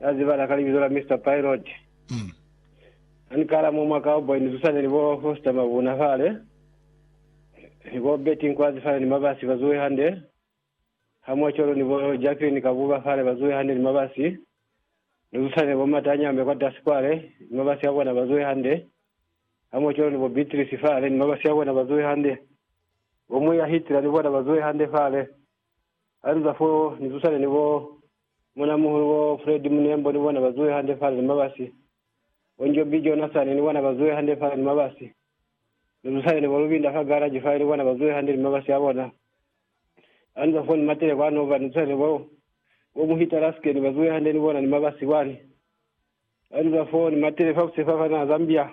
Na zibala ka libizo la Mister Pilot. Ha ni kala mo mwa Cowboy ni zusane ni bo Foster Mabuna fale, ni bo Betty Nkwazi fale ni Mabasi ba zuwe hande. Ha mwa cwalo ni bo Jacqueline Kabuba fale ba zuwe hande ni Mabasi. Ni zusane ni bo Mata Nyame kwatasi kwale ni Mabasi a bona ba zuwe hande. Ha mwa cwalo ni bo Beatrice fale ni Mabasi a bona ba zuwe hande. Bo Muya Hitler ni bona ba zuwe hande fale. Ha ni za fo, ni zusane ni bo Munamuhulu bo Fred Munembo, ni bona ba zuhe hande fale ni mabasi. Bo Njobi Jonasani, ni bona ba zuhe hande fale ni mabasi. Ni zusane ni bo Lubinda fa garaji fale, ni bona ba zuhe hande ni mabasi a bona. Ha ni za fo, ni matele kwa Nova, ni zusane ni bo, bo Muhita Laskeni, ba zuhe hande ni bona ni mabasi kwani. Ha ni za fo, ni matele fa Busefa fa naha Zambia.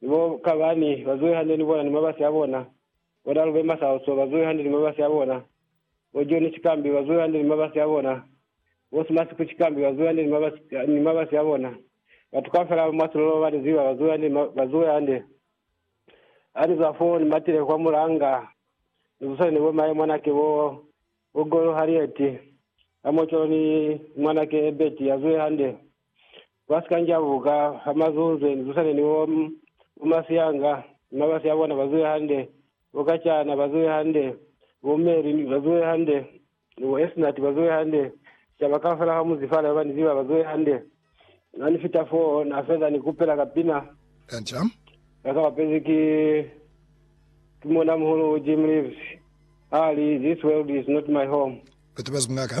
Ni bo kabani ba zuhi hande ni bona ni mabasi a bona, bo Dalube Masauso ba zuhi hande ni mabasi a bona, bo Joni Chikambi ba zuhi hande ni mabasi a bona, bo Simasiku Chikambi ba zuhi hande ni mabasi, ni mabasi a bona. Batu kaufela ba mwa silolo ba ni ziba, ba zuhi hande, ba zuhi hande. Ha ni zwa foo, ni matile kwa mulanga, ni zusane ni bo maye mwanake bo, bo Golo Harriet, ha mocolo ni mwanake Ebert, a zuhi hande. ba si ka njabuka ha mazunze, ni tusane ni bo, bo Masianga, ni mabasi a bona ba zuhe hande, bo Kachana ba zuhe hande, bo Mary ni ba zuhe hande, ni bo Esnati ba zuhe hande, sicaba kaufela ha munzi fale ba ba ni ziba ba zuhe hande. Na ni fita foo, na feza ni kupela ka pina. Kanca. Na ka bapezi ki, ki Muuna-muhulu Jim Reeves, ha li, This world is not my home. Batu ba zwi kuna ka.